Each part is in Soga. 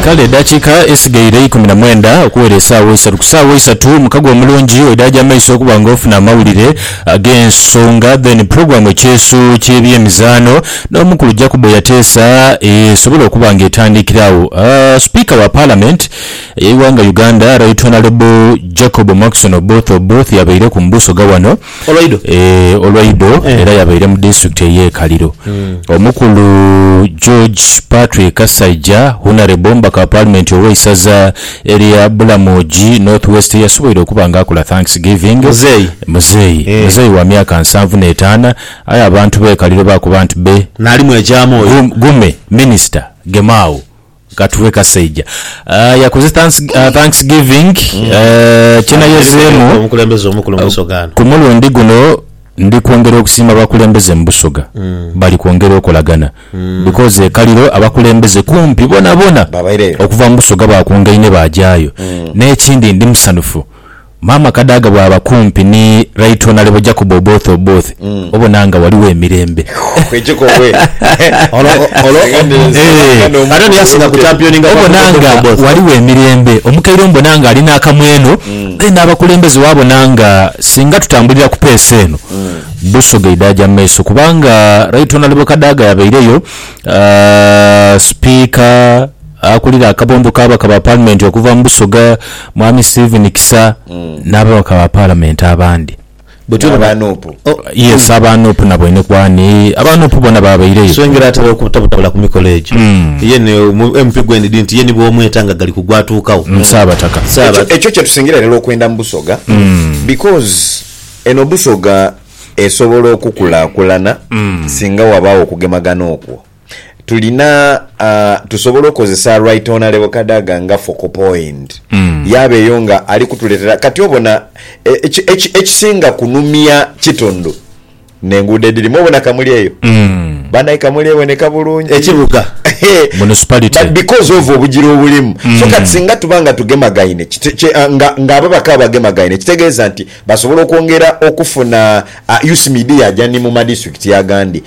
Kale edaakiika esigaire ikumi na mwenda okuwera esaawa eisatu, ku saawa eisatu mukago omulungi oidaaja amaiso okuba nga ofuna amawulire ag'ensonga then pulogulaamu ekyeesu ky'ebyemizaano n'omukulu Jacob Eyateesa esobole okuba nga etandiikira agho. Sipiika wa Paalamenti ey'eighanga Uganda Right Honourable Jacob Mwakison Oboth Oboth y'abaireku mu busoga wano. olwaido. Eeh olwaido era yabaire mu disitulikiti eye Kaliro. Omukulu George Patrick Kasaija, Hunarebo omubaka wa Paalimenti owe isaza elya Bulamoji North West yasuboire okuba nga akola thanks giving Muzeeyi. muzeeyi Eh. muzeeyi wa myaka nsanvu n'etaana aye abantu be Kaliro bakuba nti be Nali mwegyamu oyo. Gu- gume minisita gema agho. Katughe kasaija yakoze thanks giving kyenayozeemu ku mulundi guno ndi kwongera okusiima abakulembeze mu Busoga bali kwongera okolagana because e Kaliro abakulembeze kumpi bonabona okuva mu Busoga bakungaine baajayo n'ekindi ndi musanhufu Maama Kadaga bwaba kumpi ni Right Honourable Jacob Oboth Oboth obona nga waliwo emirembe. Obona nga waliwo emirembe. Omukaire mbona nga ali nakamweno then abakulembeze wabona nga singa tutambulira ku pace eno Busoga eidhaja mu maiso kubanga Right Honourable Kadaga yabaireyo, Speaker, Akulira akabondo k'ababaka ba paalimenti okuva mu Busoga, Mwami Stephen Kisa n'ababaka ba paalamenti abandi. N'aba nup. Yes, aba nup nabo enekwani. Aba nup bona baabaireyo. So engeri atera okubutabutabula ku mikolo egyo, ye ni MP gwe ndidhi nti ye ni bw'omweta nga gali ku gwatuukagho. Ssaabataka. Ssaaba. Ekyo kye tusingira irala okwenda mu Busoga because eno Busoga esobola okukulaakulana singa wabaawo okugemagana okwo. tulina uh, tusobola okozesa right honorable kadaga nga focal point mm. yabeeyo nga ali kutuletera kati obona ekisinga kunumya kitondo nenguudo edirimu obona kamuli eyo mm. banaye kamuli eboneka bulungi ekibuga municipality because of obugira obulimu mm. so kati singa tuba nga tugemagaine ah, nga, nga abo bakaba bagemagaine kitegeeza nti basobola okwongera okufuna uh, ah, ucmd yajani mu madistrict agandi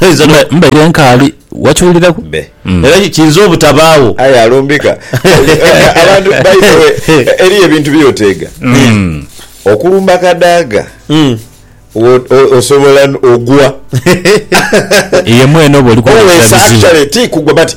Einza no- Mba- Mbaire nkaali. Wakiwuliraku? Be. Mm. Era ki- kiinza obutabaagho. Aye alumbika. Abantu by the way, eriyo ebintu byoteega. Mm. Okulumba kadaaga Mm. wo- o- osobola n- ogwa. Ye mwene oba oli kwolesa Always bizibu. actually ti kugwa but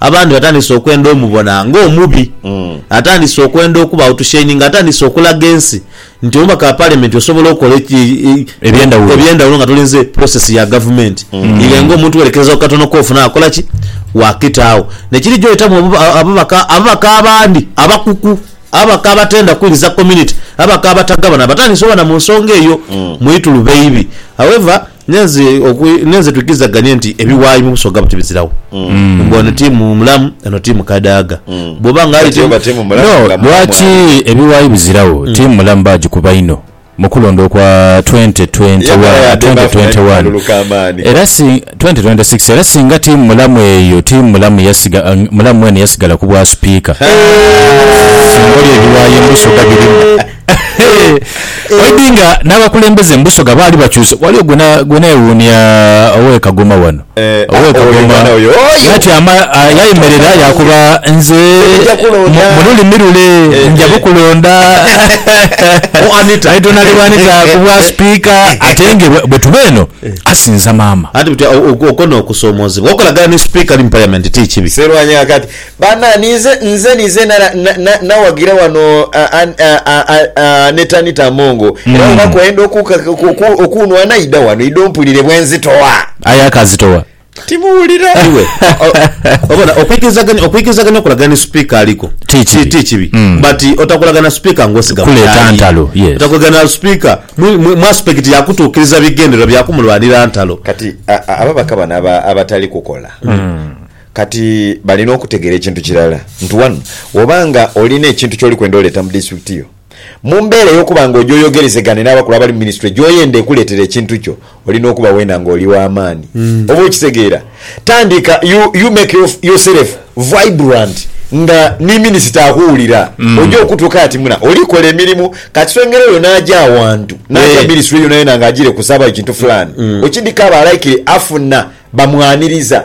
Abandi batandise okwenda omubona ng'omubi. Atandise okwenda okuba outshininga, atandise okulaga ensi nti omubaka wa Parliament osobola okola eby'endhawulo nga tolinze process ya gavumenti ire ng'omuntu werekereza ku katono k'ofuna akola ki? Waakita agho. Nekiri gy'oyitamu ababaka, ababaka abandi abakuku, ababaka abatenda kuwuliriza community, ababaka abatagabana batandise oba na mu nsonga eyo mwituluba eibi. However. Nenze okwi nenze twikizaganie nti ebiwayi mu busoga buti bizirawo. Mm. Mbu ono timu mulamu ono timu kadaaga. Mm. Bwoba nga ali timu timu mulamu no, nga lwaki ebiwayi bizirawo? Mm. Timu mulamu bagikuba inho mukulonda okwa 2021 era si 2026 era singa timu mulamu eyo timu mulamu yasiga mulamu mwene yasigala ku bwa sipiika singa oli ebiwayi mubusoga birimu Oidhi nga n'abakulembeze mu Busoga baali bakyuse. Ghaligho gwe neewuunia ow'e Kagoma wano. Ow'e Kagoma yatyama yayemerera yaakoba, Nze mu lulimi lule nja bukulonda. Aidha n'ali bw'anita ku bwasipiika ate nga bwe tuba eno asinza maama. Anti buti okwo n'okusoomoozebwa. Okolagana ni sipiika ali mu Paliamenti ti kibi. Baana, ninze, nze, ninze nara, na, na, nawagira wano a, a, a, a, a, Aneta Anita Amongo. Era Mm. bwoba kwenda oku, ka- ku- oku, okunwana ida wano, ida ompulire bwenzitowa. Aye akazitowa. Timuwulira. Iwe o- obona okwikirizaganya okwikirizaganya okulaga ni speaker aliko Ti kibi. ti kibi Mm. but otakulaga na speaker ngosiga Kuleeta mutaayi. ntalo, yes. otakulaga na speaker mu- mu- mu aspect yakutuukiriza bigendererwa byakumulwanira ntalo Kati a- a- ababaka bano aba- abatali kukola Kati balina okutegera ekintu kirala nti wano woba nga olina ekintu kyoli kwenda oleeta mu disitulikiti yo, mu mbeera ey'okuba nga oja oyogerezegane n'abakulu abali mu minisitule gy'oyenda ekuleetere ekintu kyo, olina okuba weena nga oli wa maani. Oba okitegeera? Tandika you, you make yourself vibrant nga ni minisita akuwulira. Oja okutuuka ati muna oli kola emirimu. Ka kiswengere oyo n'aja awantu, n'aja minisitule yonayona nga agire kusaba ekintu fulaani, okidhika aba likely afuna bamwaniriza.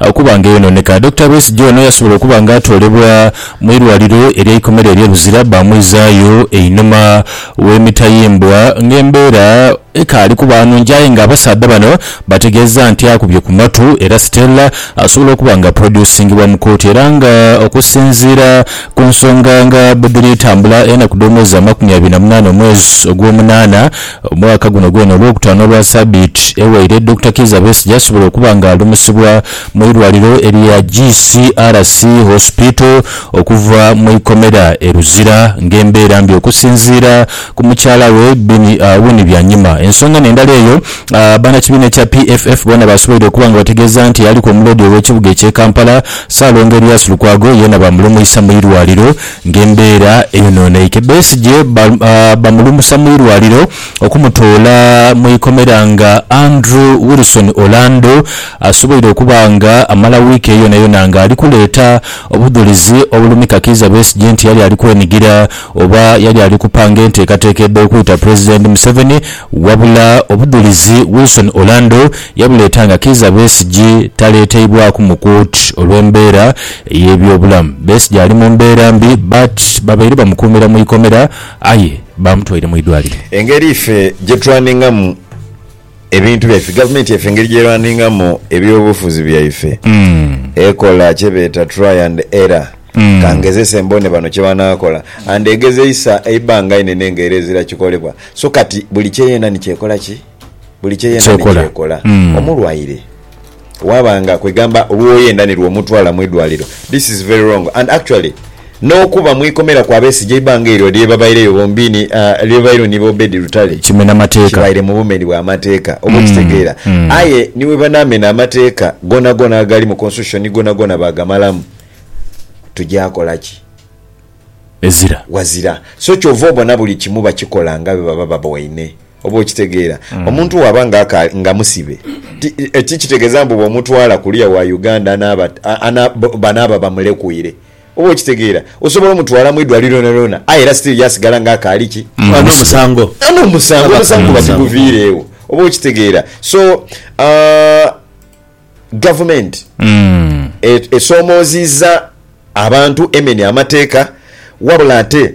Okuba nga eyonooneka. Dokita Besigye ono yasobola okuba nga atoolebwa mu irwaliro ery'eikomera erye Luzira baamwizaayo einhuma w'emitayimbwa nga embeera ekaali kuba nungi aye nga abasaadha bano bategeeza nti akubye ku matu era Stella asobola okuba nga aprodyusingibwa mu kooti era nga okusinziira ku nsonga nga bwedhiri tambula enaku dh'omwezi amakumi abiri na munaana omwezi ogw'omunaana Omwaka guno gwona Olwokutaano lwa sabiiti ewaire, Dokita Kiiza Besigye asobola okuba nga alumusibwa mu irwaliro erya GCRC Hospital okuva mu ikomera e Luzira nga embeera mbi okusinziira ku mukyala we Winnie Byanyima. Ensonga n'endala eyo banakibiina ekya PFF boona basoboire okuba nga bategeeza nti aliku omuloodi owekibuga ekye Kampala Ssaalongo Erias Lukwago yeena bamulumuisa mu irwaliro Ng'embeera eyonooneike, Besigye bamulumusa mu irwaliro okumutoola mu ikomera nga Andrew Wilson Orlando asoboire okuba nga amala wiiki eyo yonayona nga ali kuleeta obudhulizi obulumika Kiiza Besigye nti yali ali kwenigira oba yali ali kupanga enteekateeka edh'okwita Pulezidenti Museveni wabula obudhulizi Wilson Orlando yabuleeta nga Kiiza Besigye taleeteibwaku mu kooti olw'embeera ey'ebyobulamu. Besigye ali mu mbeera mbi but babaire bamukuumira mu ikomera aye bamutwaire mu idwaliro. Engeri ife gye turaningamu ebintu byaife, gavumenti yaife engeri gy'eraningamu eby'obufuzi byaife ekola kye beeta try and error, ka ngezese mbone bano kye banaakola and egezeisa eibbanga inene nga era ezira kikolebwa so kati buli kye yena ni ky'ekola ki? buli kye yendha ni kyekola. Omulwaire waaba nga kwegamba olwo yendha ni lw'omutwala mu idwaliro, this is very wrong and actually n'okuba mu ikomera kwa besigye eibanga eryo lye babaireyo bombiini lye babaireyo ni Obed Lutale kibaire mu bumeni bwa mateeka oba okitegeera aye ni bwe banaamena amateeka goonagoona agali mu Constitution goonagoona baagamalamu tugya kola ki? Ghazira. So ky'ova obona buli kimu bakikola nga bwe baba baboine. Oba okitegeera. Omuntu bwaba nga akaali, nga musibe, ti, tikitegeeza mbu bw'omutwala kuliya wa Uganda anaaba, ana, banaaba bamulekwiire. Oba okitegeera. Osobola omutwala mu idwaliro lyonalyona, aye era still yaasigala nga akaali ki? Nga n'omusango. Nga n'omusango. Omusango guba tiguviireegho. Oba okitegeera. So, aah, gavumenti e, esoomoozizza abantu emenya amateeka, wabula ate.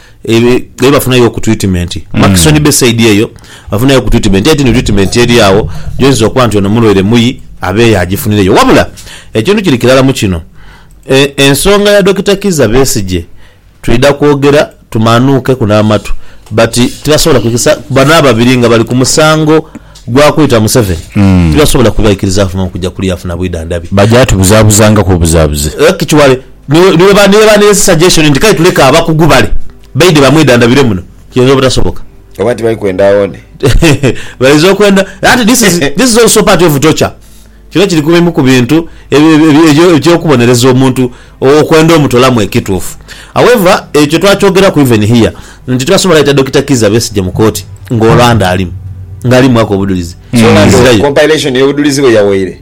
Eyo eyo bafunayo oku treatment Murchison Bay side eyo bafunayo oku treatment aye tino treatment eri agho gyoyinza okuba nti ono mulwaire muyi abe yagifunireyo wabula ekintu kiri kirala mu kino e ensonga ya Dokita Kizza Besigye twidha kwogera tumanuukeku n'amatu but tibasobola kwikiriza bano ababiri nga bali ku musango gwa kwita Museveni tibasobola kubaikiriza afune okugya kule yafuna bwidhandhabi. Baja tubuzabuzangaku obuzabuze. Actually. Ni bwe baa n'ensi suggestion nti kale tuleke abakugu bale baidhe bamwedandabire muno, kiyinza obutasoboka. Oba nti bali kwenda awone. Bayinza okwenda, anti this is, this is also part of torture. Kino kiri ku bimu ku bintu eky'okubonereza omuntu okwenda omutolamu ekituufu. However, ekyo twakyogeraku even here nti tibasobola leeta Dokita Kizza Besigye mu kooti nga Orlando alimu, nga ali mu mwaka obudhulizi. So Orlando compilation y'obudhulizi bwe yawaire?